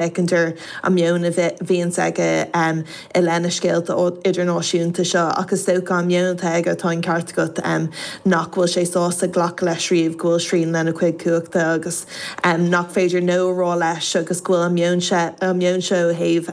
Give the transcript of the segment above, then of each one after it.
feiceantar an meon a bhíonn aige i leith na scéalta idirnáisiúnta seo, ach is dócha, an meon atá aige, tá an ceart agat, nach bhfuil sé sásta glacadh leis riamh go bhfuil srian lena chuid cumhachta agus nach féidir 'No' a rá leis agus go bhfuil an meon seo ó thaobh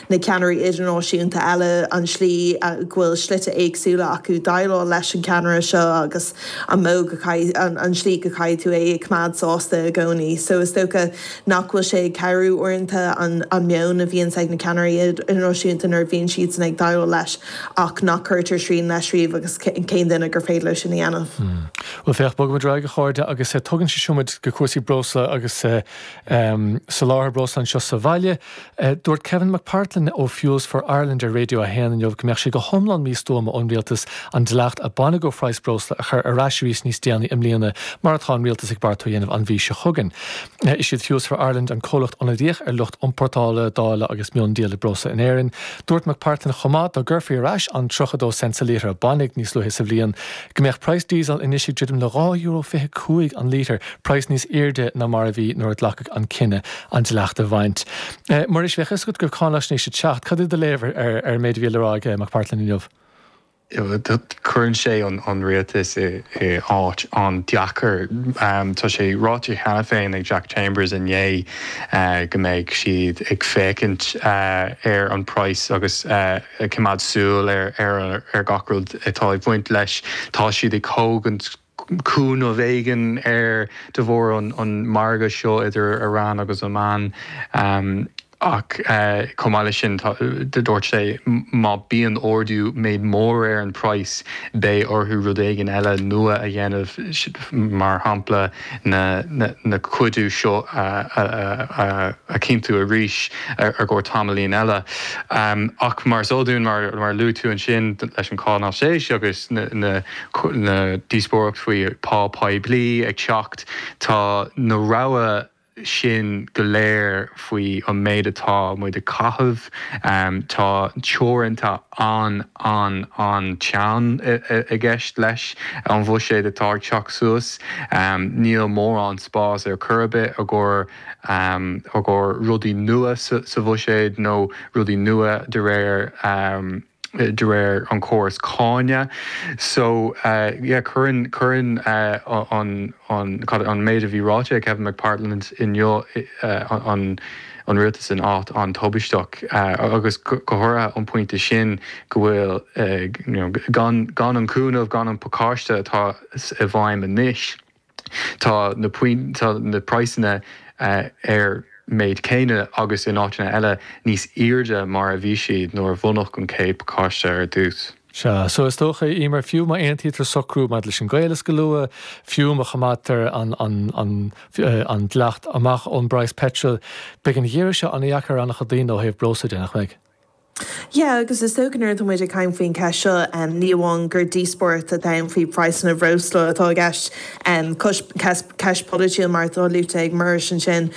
na ceannairí idirnáisiúnta eile, an tslí go bhfuil slite éagsúla acu déileáil leis an gceannaire seo agus an tslí go gcaithfidh tú é a choimeád sásta i gcónaí. So is dócha. Nach bhfuil sé ag cabhrú uaireanta an meon a bhíonn ag na ceannairí idirnáisiúnta nuair a bhíonn siadsan ag déileáil leis ach nach cuirtear srian leis riamh agus cén duine gur féidir leo sin a dhéanamh? Bhuel, féach, bogfaimid ar aghaidh, a chairde, agus tugann sé seo muid go cúrsaí breosla agus soláthar breosla anseo sa bhaile. Dúirt Kevin McPartlan ó Fuels for Ireland ar Raidió 1 inniu go mbeadh sé go hiomlán místuama ón rialtas an dleacht a baineadh ó phraghas breosla a chur ar ais arís níos déanaí i mbliana mar atá an rialtas ag beartú a dhéanamh an mhí seo chugainn. Is iad Fuels for Ireland an comhlacht ionadaíoch ar lucht iompórtála, dáileadh agus miondíola breosla in Éirinn. Dúirt McPartlan chomh maith dá gcuirfí ar ais an 32 cent sa lítear a baineadh níos luaithe sa bhliain, go mbeadh price diesel anois ag druidim le dhá euro fiche cúig an lítear, price níos airde ná mar a bhí nuair a glacadh an cinneadh an dleacht a bhaint. Muiris, bheadh a fhios agat go bhfuil cáinaisnéis ag teacht. Cad é do léamh ar an méid a bhí le rá ag McPartlan inniu? Cuireann sé an rialtas i áit an-deacair. Tá sé ráite cheana féin ag Jack Chambers inné go mbeidh siad ag féachaint ar an price agus, coimeád súil ar gach rud atá ag baint leis. Tá siad ag tógaint cúnamh éigin air de bharr an margadh seo idir Iran agus Oman ach chomh maith leis sin dúirt sé má bíonn ardú méid mór ar an price beidh orthu rud éigin eile nua a dhéanamh mar shampla na cuidiú seo a chinntiú arís i gcomhair tamaillín eile. Ach mar is eol dúinn, mar a luaigh tú ansin, leis an cháinaisnéis agus na díospóireacht faoi phá poiblí ag teacht, tá na rogha. sin go léir faoi an méid atá muid ag caitheamh. Tá teorannta an, an, an teann i gceist leis an bhuiséad atá ag teacht suas. Níl mórán spás ar chor ar bith i gcomhair, i gcomhair rudaí nua sa bhuiséad nó rudaí nua de réir de réir an chórais cánach so yeah cuireann cuireann an an cad an méid a bhí ráite ag Kevin McPartlan inniu an an rialtas in áit an-tubaisteach agus go háirithe an pointe sin go bhfuil you know gan gan an cúnamh gan an pacáiste atá i bhfeidhm anois Tá na praghsanna ar an méid céanna agus, in áiteanna eile, níos airde mar a bhí siad nuair a bunaíodh an chéad pacáiste ar dtús. Sea, so is dócha, Emer, fiú má aontaítear socrú maidir leis an gcaolas go luath, fiú má choimeádtar an dleacht amach ón bpraghas peitril, beidh an geimhreadh seo an-dheacair ar an-chuid daoine ó thaobh breosla de, nach mbeidh? Yeah, agus is dócha nuair atá muid ag caint faoin cheist seo, ní amháin gur díospóireacht atá ann faoi phraghsanna breosla atá i gceist, ceist pholaitiúil mar atá luaite ag Muiris ansin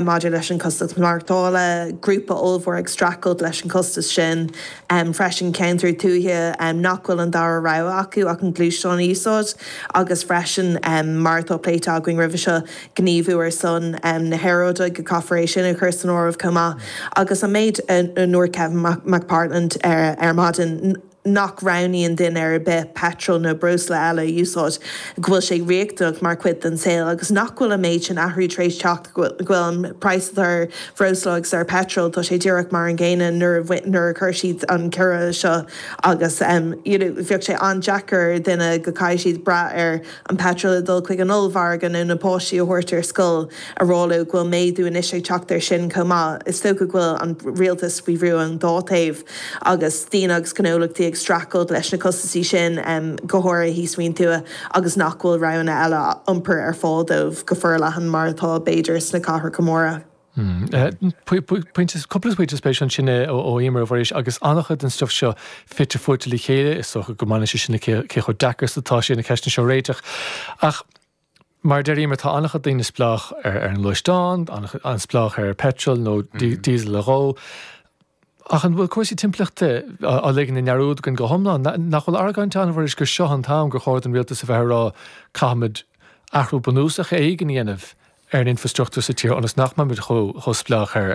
maidir leis an chostas maireachtála, grúpa ollmhór ag streachailt leis an chostas sin freisin, ceantair tuaithe nach bhfuil an dara rogha acu ach an gluaisteán a úsáid agus freisin mar atá pléite againn roimhe seo, gníomhú ar son na haeráide, caithfear é sin a chur san áireamh chomh maith, agus an méid a dúirt Kevin McPartlan ar maidin, nach roghnaíonn duine ar bith peitreal nó breosla eile a úsáid, go bhfuil sé riachtanach mar chuid den saol, agus nach bhfuil an méid sin athrú tar éis teacht, go bhfuil an praghas atá ar bhreosla agus ar pheitreal, tá sé díreach mar an gcéanna nuair a chuir siad an ciorrú seo, agus you know bheadh sé an-deacair ar dhuine go gcaithfidh siad brath ar an peitreal ag dul chuig an ollmhargadh nó na páistí a thabhairt ar scoil a rá leo go bhfuil méadú anois ag teacht air sin chomh maith. Is dócha go bhfuil an rialtas faoi bhrú ón dá thaobh agus daoine agus gnólachtaí ag streachailt leis na costasaí sin, go háirithe thíos faoin tuath agus nach bhfuil roghanna eile iompair ar fáil dóibh go forleathan mar atá b'fhéidir sna cathracha móra. Pointe, cúpla pointe spéisiúil ansin ó Emer a Mhuiris, agus an-chuid den stuif seo fite fuaite le chéile, is dócha go mbaineann sé sin le cé chomh deacair is atá sé na ceisteanna seo a réiteach. Ach mar a deir Emer, tá an-chuid daoine spleách ar an ngluaisteán, an-chuid spleách ar petrol nó diesel a dhó. Ach an bhfuil cúrsaí timpeallachta á ligean i ndearúd againn go hiomlán? Nach bhfuil argóint ann a mhaífeadh gur seo an t-am gur chóir don rialtas a bheith ag rá 'caithfimid athrú bunúsach éigin a dhéanamh ar an infreastruchtúr sa tír ionas nach mbeimid chomh spleách ar